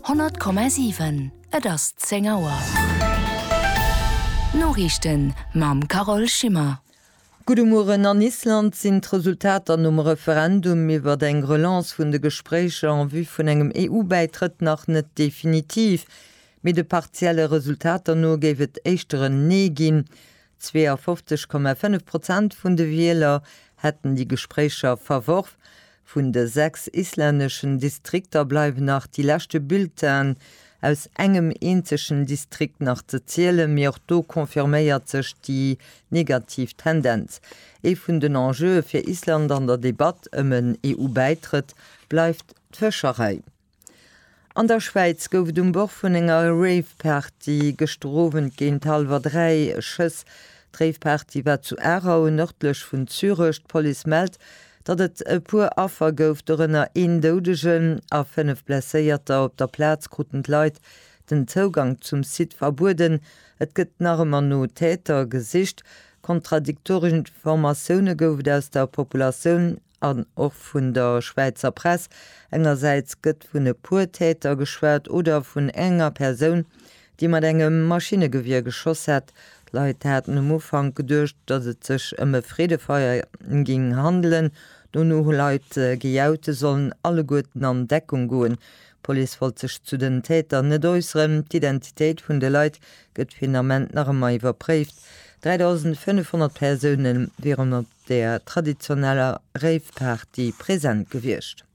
100,7 Et ass 10 Auer. D'Noriichten mam Carole Schimmer. Gudde Mueren, An Island sinn d'Resultater nom Referendum iwwert eng Relance vun de Gespréicher en vue vun engem EU-Bäitrëtt nach net definitiv, mee de partielle Resultater no géif et éischter en Nee ginn. 52,5 Prozent vun de Wieler hätten déi Gespréicher verworf. Vun de sechs islänneschen Distrikter bleiwen nach déi leschte Bulletinen aus engem eenzegen Distrikt nach ze zielen, mee och do confirméiert sech déi negativ Tendenz. Ee vun den Enjeue fir Island an der Debatt ëm en EU-Bäitrëtt bleift d'Fëscherei. An der Schwäiz gouf et um Bord vun enger Rave-Party gëschter Owend géint hallwer 3 Schëss. D'Rave-Party war zu Aarau, nërdlech vun Zürech. D'Police mellt, datt et e puer Affer gouf, dorënner een Doudegen a 5 Blesséierter. Op der Plaz kruten d'Leit den Zougank zum Site verbueden. Et gëtt nach ëmmer no Täter gesicht. Kontradiktoresch Informatioune gouf et aus der Populatioun an och vun der Schwäizer Press, engersäits gëtt vun e puer Täter geschwat oder vun enger Persoun, déi mat engem Maschinnegewier geschoss hätt. D'Leit haten um Ufank geduecht, datt et sech ëm e Freedefeier géing handelen. Dono hu Leit gejaut, se sollen alleguerten an Deckung goen. D'Police wollt sech zu den Täter net äusseren. D'Identitéit vun de Leit gëtt fir den Ament nach ëmmer iwwerpréift. 3.500 Persoune wieren op der traditioneller Rave-Party present gewiescht.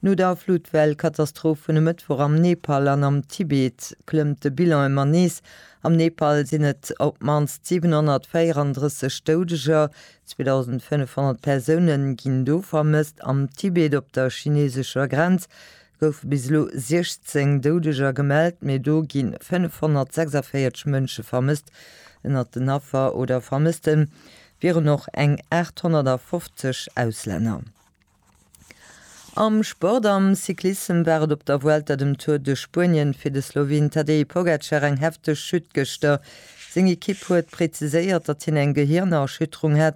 No der Fluttwell-Katastroph vun e Mëttwoch am Nepal an am Tibet klëmmt de Bilan ëmmer nees. Am Nepal sinn et op d'mannst 734 Doudeger, 2.500 Persoune ginn do vermësst. Am Tibet, op der chineesescher Grenz, Goufe bis elo 16 Doudeger gemellt, mee do gi 546 Mënsche vermësst. Ënnert den Affer oder Vermësste wieren och eng 850 Auslänner. Am Sport, Am Cyclissem war et op der Vuelta, dem Tour de Spuenien, fir de Sloween Tadej Pogacar eng hefteg Chute gëschter. Seng Ekipp huet präziséiert, datt hien eng Gehiernerschütterung hätt.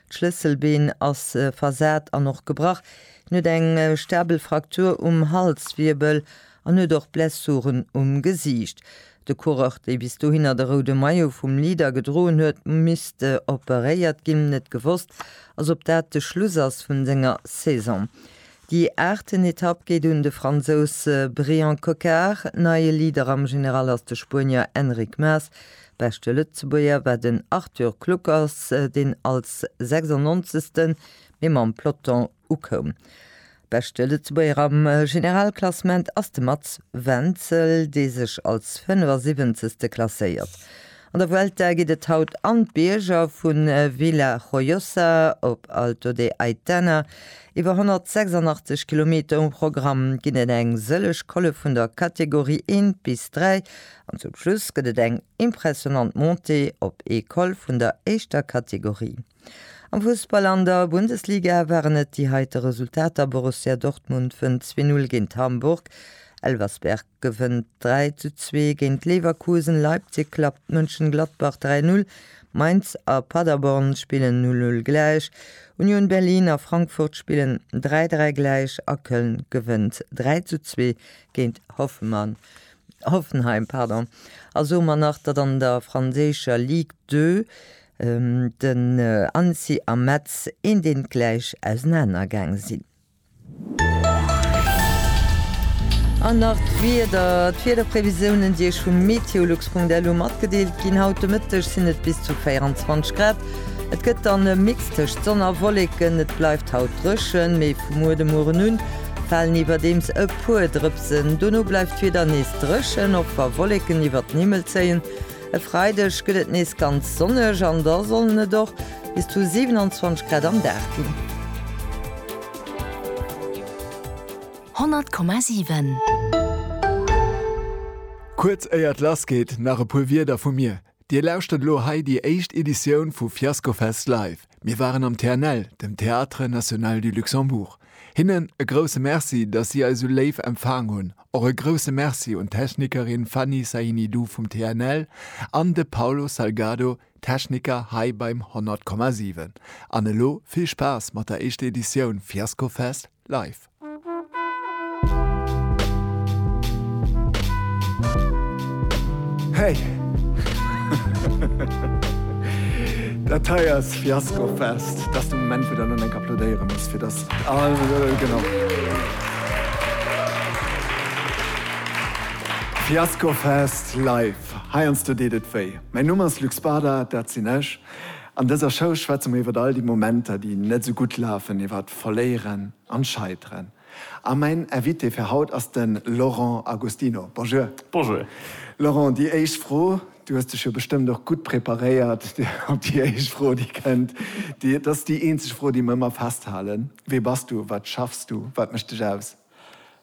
D'Schlësselbeen ass versat an och gebrach. Hien huet eng stabel Fraktur um Halswirbel an huet och Blessuren um Gesiicht. De Coureur, dee bis dohinner de roude Maillot vum Leader gedroen huet, misst operéiert ginn. Net gewosst ass, ob dat de Schluss ass vun senger Saison. Déi aachten Etapp geet un de Fransous Brian Cocard. Neie Leader am General ass de Spuenier Enric Mas. Beschte Lëtzebuerger war den Arthur Kluckers, deen als 96. Mee mam Peloton ukoum. Beschte Lëtzebuerger am Generalklassement ass de Mats Wenzel, dee sech als 75. klasséiert. An der Vuelta geet et haut an d'Bierger, vu Villajoyosa op Alto de Aitana. Iwwer 186 Kilometer um Programm ginn et, eng sëlleg Colle vun der Kategorie 1 bis 3 An zum Schluss gëtt et eng impressionnant Montée op ee Col vun der éischter Kategorie. Am Fussball an der Bundesliga waren et déi heite Resultater, Borussia Dortmund wënnt 2-0 géint Hamburg, Elversberg gewënnt 3-2 géint Leverkusen, Leipzig klappt Mönchengladbach 3-0, Mainz a Paderborn spillen 0-0 gläich, Union Berlin a Frankfurt spillen 3-3 gläich a Köln gewënnt 3-2 géint Hoffenheim. Hoffenheim, pardon, a soe mer nach, datt an der franséischer Ligue 2 den Annecy a Metz eendeentgläich ausenaner gaang sinn. An nach d'Wieder, D'Wiederprevisiounen, déi Iech vum meteolux.lu matgedeelt ginn. Haut de Mëtteg sinn et bis zu 24 Grad. Et gëtt dann e Mix tëscht Sonn a Wolleken. Et bleift haut dréchen, mee vu muer de Mueren un Falen iwwerdeems e puer Drëpsen, dono bleift d'Wieder nees dréchen, och wa Wolleken iwwert den Himmel zéien. E Freideg gëtt et nees ganz sonneg an da sollen et och bis zu 27 Grad am Dag ginn. 100,7. Kuerz éiert lass geet nach e puer Wierder vu mir. Dir lauschtert elo hei déi éischt Editioun vu Fiascofest Live. Mir waren am TNL, dem Théâtre National du Luxembourg. Hinnen e grousse Merci, dass si eis esou léif empfaang hunn. Och e grousse Merci un d'Technikerin Fanny Sahinidou vum TNL an de Paulo Salgado, Techniker hei beim 100,7. An elo vill Spaass mat der éischter Editioun Fiascofest Live. Hey! Dat hei ass Fiasco Fest. Dat ass de Moment, wou der elo enk applaudéiere musst, fir dass all. Genau. Fiasco Fest live. Heiansdo deet et wéi. Mäin Numm ass Luc Spada, dat sinn ech. An dëser Show schwätze mer iwwer all déi Momenter, déi net esou gutt lafen, iwwer. Verléieren an Scheiteren. A mäin Invité fir haut ass den Laurent Agostino. Bonjour. Bonjour. Laurent, déi éischt Fro, du hues dech jo bestëmmt och gutt preparéiert op déi éischt Fro déi kënnt. Dat ass déi eenzeg Fro déi mer ëmmer festhalen. Wee bass du? Wat schaffs du? Wat mécht dech aus?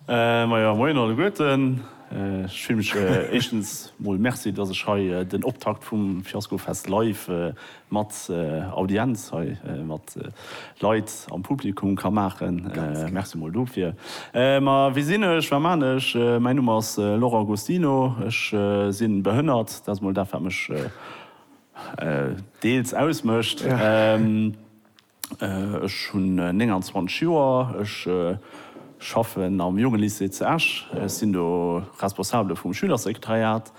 Majo, moien alleguerten. Ech freeë mech éischtens mol, Merci, dass ech hei den Optakt vum Fiaskofest live mat Audienz hei, mat Leit am Publikum ka maachen. Merci mol dofir. Ma wie sinn ech, wat man ech? Mäin Numm ass Laurent Gostino. Ech si behënnert, dat ass mol dat wat mech deels ausmécht. Ech hunn 29 Joer, ech schaffen am Jongelycée zu Esch, ech sinn do Responsabele vum Schülersekretariat.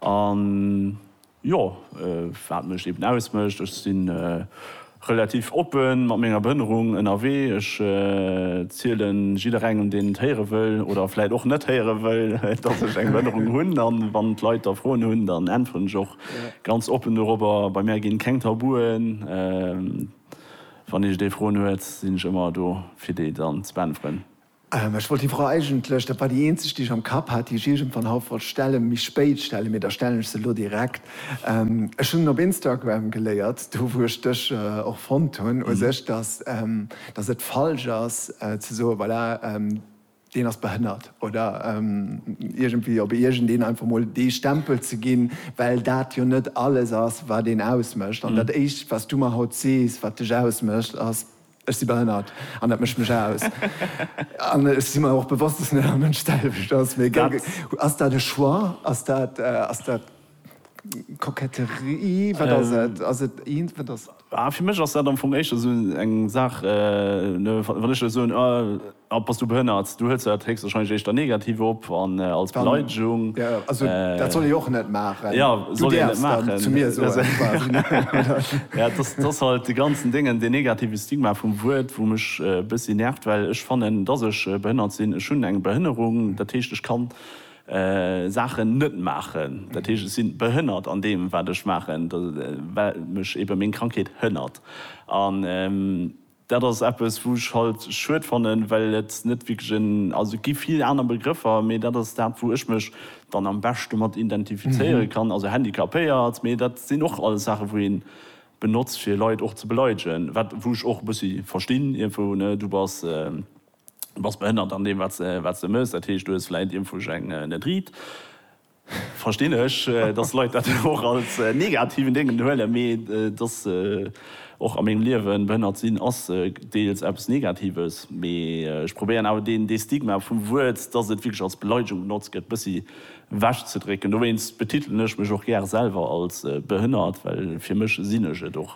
A jo, wat mech eben ausmécht, ech si relativ oppe mat menger Behënnerung ënnerwee, ech ziele jidderengem, deen et héiere wëll oder vläicht och net héiere wëll, datt ech eng Behënnerung hunn. A wann d'Leit da Froen hunn, dann äntweren ech och Ganz oppen dorobber, bei mär ginn keng Tabuen, wann iech dee Froen huet, sinn ech ëmmer do fir déi dann ze beäntweren. Ech wollt déi Fro eigentlech, dat war déi eenzeg déi ech am Kapp hat, déi ech iergendwann haut wollt stellen, méi spéit stellen, mee da stellen ech se elo direkt. Ech hunn op Instagram geléiert, do wou ech dech och fonnt hunn u sech, dass et falsch ass ze soen, voilà, deen ass behënnert oder iergendwéi op iergendeen einfach mol dee Stempel ze ginn, well dat jo net alles ass, wat een ausmécht. An dat Éischt, wat s du mer haut sees, wat dech ausmécht, ass, Ech si behënnert an dat mécht mech aus. An ech si mer och bewosst, dass net all Mënsch d'selwecht ass. Mee ass dat e Choix? Ass dat. Koketterie, wat ass et? Ass et eent, wat ass. Ah, fir mech ass dat am Fong éischter esou eng Saach, wann ech der soen, ah, bass du behënnert, du huels jo dat héchstwahrscheinlech éischter negativ op an als Beleidegung. Ja, also dat soll ee och net maachen. Ja, soll een net maachen. Du däerfs dann zu mir soen, quasi. Ja, et ass, et ass halt dee ganzen Déngen, deen negative Stigma vum Wuert, wou mech e bëssi nervt, well ech fannen, dass ech behënnert sinn. Ech hunn eng Behënnerung, dat heescht, ech kann. Saachen net maachen, dat heescht ech sinn behënnert an deem wat ech maachen, well mech ebe meng Krankheet hënnert. An dat ass eppes wou ech halt schued fannen, well et net wierklech en, also et gi vill aner Begrëffer, mee dat ass dat wou ech mech dann am beschte mat identifizéiere kann, also handicapéiert, mee dat sinn och alles Saachen wou een benotzt fir Leit och ze beleidegen, wat wou ech och e bëssi verstinn iergendwou, ne, du bass. Du bass behënnert an deem wat se mëss, dat heescht du hues vläit iermfuerg eng net riit. Verstinn ech, dass Leit dat och als negativen Déngen huelen, mee et ass och a mengem Liewen, behënnert sinn ass deels eppes Negatives, mee ech probéieren awer dee Stigma vum Wuert, dass et wierklech als Beleidegung benotzt gëtt, e bëssi ewech ze drécken. Dowéinst betitelen ech mech och gär selwer als behënnert, well fir mech sinn ech et och.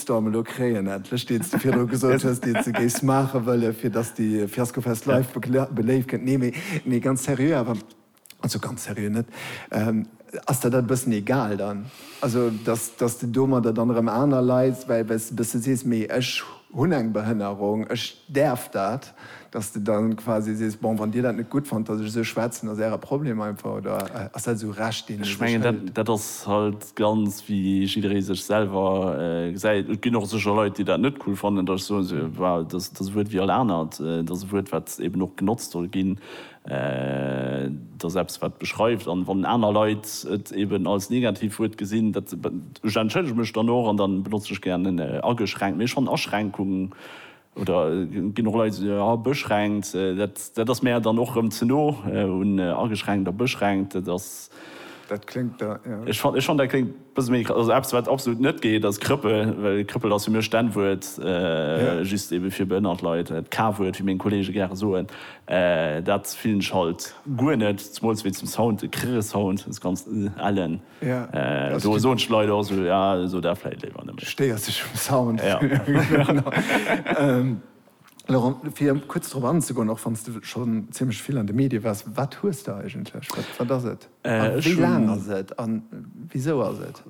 Shitstorm elo kréien endlech, deen s de virdru gesot hues, deen s de géifs maache wëllen, fir datt s de Fiaskofest live beléift gëtt. Nee, mee, mee ganz seriö awer, also ganz seriö net, ass der dat e bëssen egal dann? Also datt, datt s de domadder dann erëm aner Leit, well, well s de e bësse sees, mee ech hunn eng Behënnerung, ech däerf dat? Dass de dann quasi sees, bon, wann dir dat net gutt fannt, dass ech esou schwätzen, ass äre Problem einfach, oder ass dat esou Recht, deen ee Ech sech mengen, dat, hëlt? dat ass halt ganz, wéi jidderee sech selwer gesäit. Et ginn och sécher Leit, déi dat net cool fannen, dass ech soen, se, well dass dass e Wuert wéi all anert, et ass e Wuert, wat eben och genotzt soll ginn, et ass eppes, wat beschreift. An wann aner Leit et eben als Negativwuert gesinn, dat, ech entschëllege mech dann och an da benotze ech gären en ageschränkt. Mee ech fannen Aschränkung Oder et ginn och Leit, déi soen, ah, beschränkt, dat ass mär dann och erëm ze no un ageschränkt a beschränkt. Dat ass. Dat kléngt da, jo. Ech fannen, ech fannen, dat kléngt e bësse méi, also eppes, wat absolut net geet, ass Krëppel, well Krëppel ass fir mech d'N-Wuert, just ebe fir behënnert Leit, d'K-Wuert, wéi meng Kollege gäre soen. Dat fillen ech halt guer net, zemools wéi zum Sound, de Krrr-Sound, dës ganz ellen. Do soen d'Leit och esou, jo, esou dat vläit léiwer net méi. Stéiers dech um Sound. Laurent, fir kuerz drop anzegoen, och wann s de schonn zimlech vill an de Medie waars, wat hues de eigentlech? Wat ass et? A wéi laang ass et? A wisou ass et?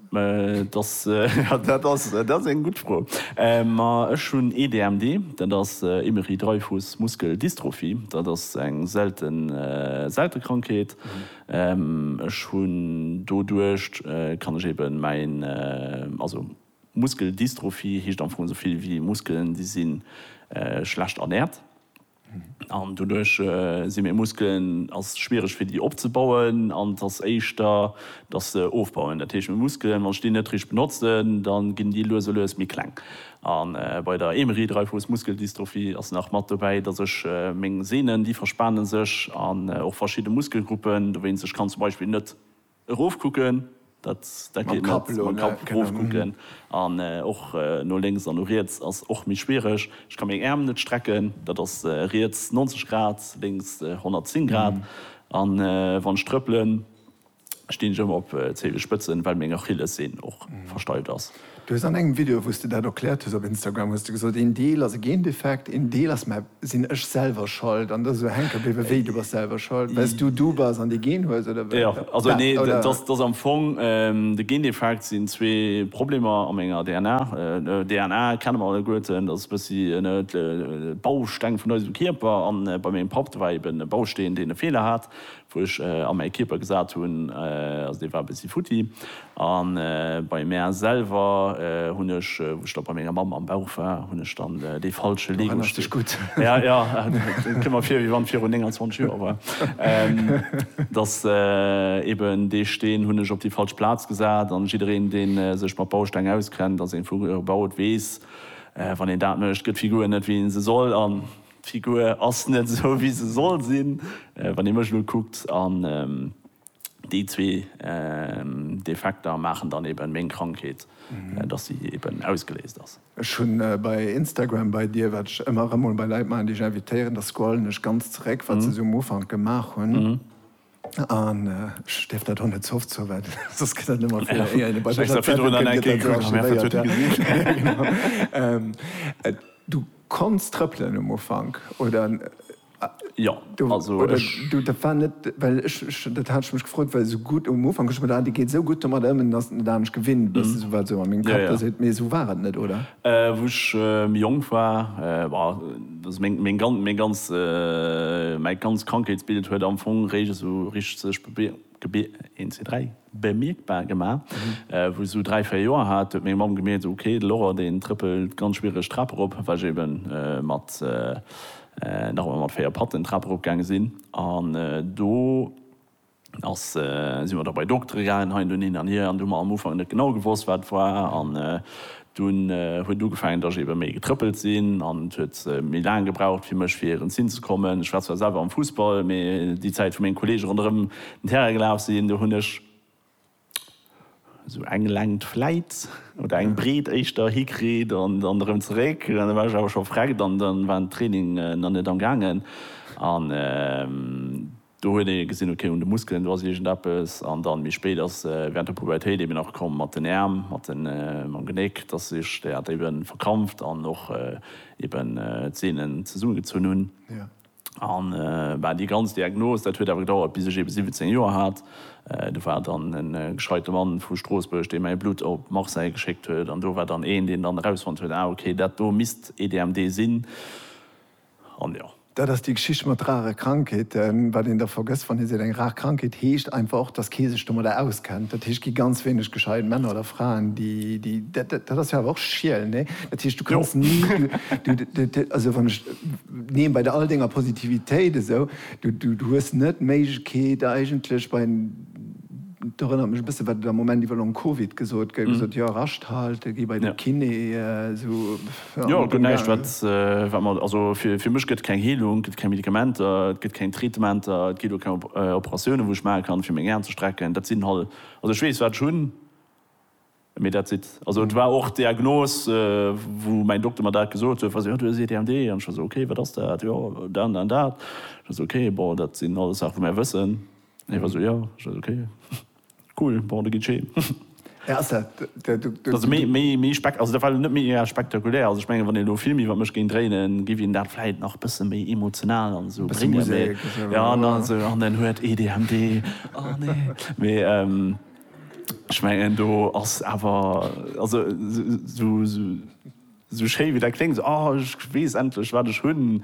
Dat ass eng gutt Fro. Ma ech hunn ee DMD, dat ass Émery-Dreifuss-Muskel-Dystrophie. Dat ass eng selte Krankheet, Ech hunn doduercht kann ech eben mäin, also Muskeldystrophie heescht am Fong esou vill wéi Muskelen déi si schlecht ernährt an doduerch si meng Muskelen ass schwiereg fir déi opzebauen an et ass éischter dass se ofbauen. Dat heescht meng Muskelen wann ech déi net richteg benotzen dann ginn déi lues a lues méi kleng A bei der Émery Dreifuss Muskeldystrophie ass nach mat dobäi, dass ech meng Sehnen, déi verspane sech, an och verschidde Muskelgruppen, dowéinst ech kann zum Beispill net erofkucken, dat dat geet net, mam Kapp erofkucken, an och no lénks an no riets ass och méi schwiereg. Ech ka meng Äerm net strecken, dat ass riets 90 Grad, lénks 110 Grad, an wann ech trëppelen, Stinn ech ëmmer op Zehenspëtzen, well meng Achillessehn och versteift ass. Du hues an engem Video wous de dat erkläert hues op Instagram hues de gesot, een Deel ass e Gendefekt, een Deel ass, mä sinn ech selwer schold an dass esou hänke bliwwe wéi? Du bass selwer schold well s du du bass an dee Gen hues oder wat? Jo, also nee, dat ass am Fong de Gendefekt sinn zwee Problemer a menger DNA. DNA kenne mer alleguerten, dat ass e bëssi de Bausteng vun eisem Kierper an bei mengem Papp, do war eben e Bausteen deen e Feeler hat, Wou ech a mäi Kierper gesat hunn, also dee war e bëssi futti. A bei mär selwer hunn ech, wou ech da bei menger Mamm am Bauch war, hunn ech dann dee falsche Lego-Steen. Du erënners dech gutt. Ja, ja, et kënnt mer vir, wéi wann et virun 29 Joer war. Dass eben dee Steen hunn ech op déi falsch Plaz gesat. An jiddereen, dee sech mat Bausteng auskennt a seng Figure baut, weess, wann een dat mécht, gëtt d'Figur net, wéi ee se soll. D'Figur ass net esou wéi se soll sinn, wann ee mech elo kuckt, an déi zwee Defekter maachen dann eben meng Krankheet, dass si eben ausgeléist ass. Ech hunn bei Instagram bei dir, wat ech ëmmer erëm mol bei Leit maachen, déi ech invitéieren, da scrollen ech ganz zeréck, wat se esou um Ufank gemaach hunn. An ech dierf dat och net ze oft soen, well soss gëtt dat net méi fir éier een e bei mech an d'Zentrum kënnt, gëtt dat sou archivéiert. Du konns trëppelen um Ufank, oder? Jo, also ech. Du, dat war net, well ech, dat hat ech mech gefrot, well esou gutt um Ufank hu ech geduecht, ah dee geet esou gutt domadder ëm, ass et net anescht gewinnt, wat esou a mengem Kapp do seet, mee esou war et net, oder? Wou ech méi jonk war, war. Also meng, meng gan, meng ganz, mäi ganzt Krankheetsbild huet am Fong réischt esou richteg sech be, be, een, zwee, dräi, bemierkbar gemaach. Wou ech esou dräi, véier Joer hat, huet meng Mamm gemierkt, ok, de Laurent, deen trëppelt ganz schwiereg d'Trap erop, well ech ebe mat, nach ëmmer mat véier Patten d'Trap erop gaange sinn. An do. Da si mer da bei Doktere gaangen, hei an do, hin an hier, an do hu mer am Ufank net genau gewosst, wat war. An dunn huet ugefaangen, dass ech ebe méi getrëppelt sinn, an et huet méi laang gebraucht fir mech fir erëmzin ze kommen. Ech war zwar selwer am Fussball, mee déi Zäit, wou meng Kolleege ronderëm den Terrain gelaf sinn, do hunn ech. Esou eng Längt vläit, oder eng Breet éischter, hikritt an dann erëm zeréck. An da war ech awer scho vreckt an da war den Training nach net am gaangen. An do huet ee gesinn, ok, un de Muskelen, do ass iergendeppes. An dann méi spéit ass während der Pubertéit eben och komm mat den Äerm, mat mam Genéck, dass ech dat eben verkrampft an och eben d'Seenen zesummegezunn hunn. An bah, déi ganz Diagnos, dat huet awer gedauert, bis ech eben 17 Joer hat. Do war dann e gescheite Mann vu Stroossbuerg, dee mäi Blutt op Marseille geschéckt huet. An do war dann een, deen dann erausfonnt huet, Ah, okay, dat do misst EDMD sinn. An jo. Dat ass déi Geschicht mat rare Krankheeten. Wat een da vergësst, wann ee seet, eng rar Krankheet, heescht einfach och, dass kee sech domadder auskennt. Dat heescht, et gi ganz wéineg gescheit Männer oder Fraen, déi, déi, dat ass jo awer och schiel, nee? Dat heescht, du kanns ni, du, also wann ech. Neen, bei all denger Positivitéit esou, du hues net d'Méiglechkeet eigentlech bei, et erënnert mech e bësse wat et am Moment iwwer Long Covid gesot gëtt, gesot, jo rascht halte, gi bei de Kiné, esou, jo. Jo, gëtt näischt wat wat mer, also fir mech gëtt et keng Heelung, gëtt keng Medikamenter, et gëtt keng Traitementer, et ginn och keng Operatiounen wou ech maache kann fir meng Aen ze strecken, dat sinn halt, also ech weess wat ech hunn. Mee that's it. Also et war och d'Diagnos, wou mäin Dokter mer dat gesot huet, wa se, jo, du hues EDHD. An ech war esou, okay, wat ass dat? Jo, dat an dat. Ech war esou, okay, bon, dat sinn alles Saache wou mär wëssen. Hie war esou, jo. Ech war esou, okay, cool, bon, da geet ech heem. Hä, ass dat de, de, de. Also méi, méi, méi spek, also dat war net méi ea spektakulär. Also ech mengen, wann een elo e Film iwwer mech géing dréinen, géif een dat vläit nach bësse méi emotional an esou Bësse bréngen. Musek, Mee, jo, jo. an dann esou, an en huet EDHD, oh nee. Mee, Ech mengen do ass awer, also sou schéi wéi dat kléngt, sou ah ech weess endlech wat ech hunn,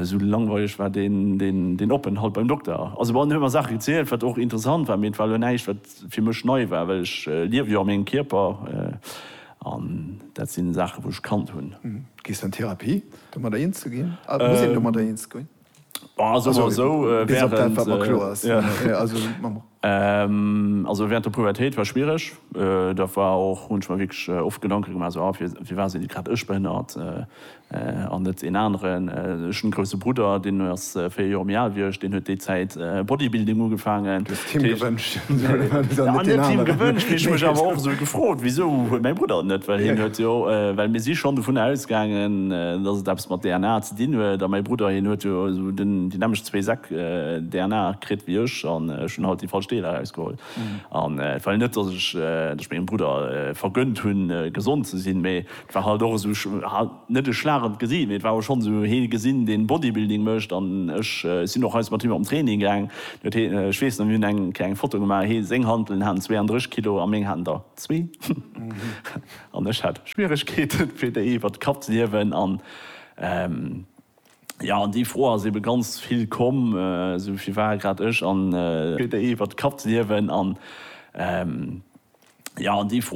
sou langweileg war deen Openthalt beim Dokter. Also bon, en huet mer Saache gezielt, wat och interessant war, mee et war elo näischt wat fir mech nei war, well ech liewe jo a mengem Kierper an dat sinn Saache wou ech kannt hunn. Gees du an Therapie, domadder eens ze ginn? Muss een domadder eens goen? Also soen wir so, bis op dat, wat mer kloer ass. Also während der Pubertéit war schwiereg. Da war och, hunn ech mer wierklech oft Gedanke gemaach, esou, ah, firwat sinn grad ech behënnert an net een aneren? Ech hunn e grousse Brudder, deen ass véier Joer méi al wéi ech, deen huet déi Zäit Bodybuilding ugefaangen. Du hues et him gewënscht an net deenen aneren. An net him gewënscht, mee ech hu mech awer och esou gefrot, wisou huet mäi Brudder et net? Well hien huet jo, well mir si schonn dovunner ausgaangen, dass et eppes mat DNA Deen huet, a mäi Brudder, hien huet jo esou déi nämmlecht zwee Säck DNA kritt wéi ech, an ech hunn halt déi falsch Deeler erausgeholl. An et war jo net, datt ech mengem Brudder vergënnt hunn, gesond ze sinn, mee et war halt och esou, net e Schlag an d'Gesiicht, mee et war schonn esou, hie gesinn, deen Bodybuilding mécht, an ech sinn och eis mat him an Training gaang. Ech weess nach, mir hunn eng kleng Foto gemaach, hie, seng Hanteln haten 32 Kilo a meng haten der zwee, an ech hat Schwieregkeeten, fir déi iwwert de Kapp ze hiewen. Jo, an déi Fro ass ebe ganz vill komm, esou vill war grad ech an. Iwwert d'Kapp ze hiewen an, jo, an déi Fro.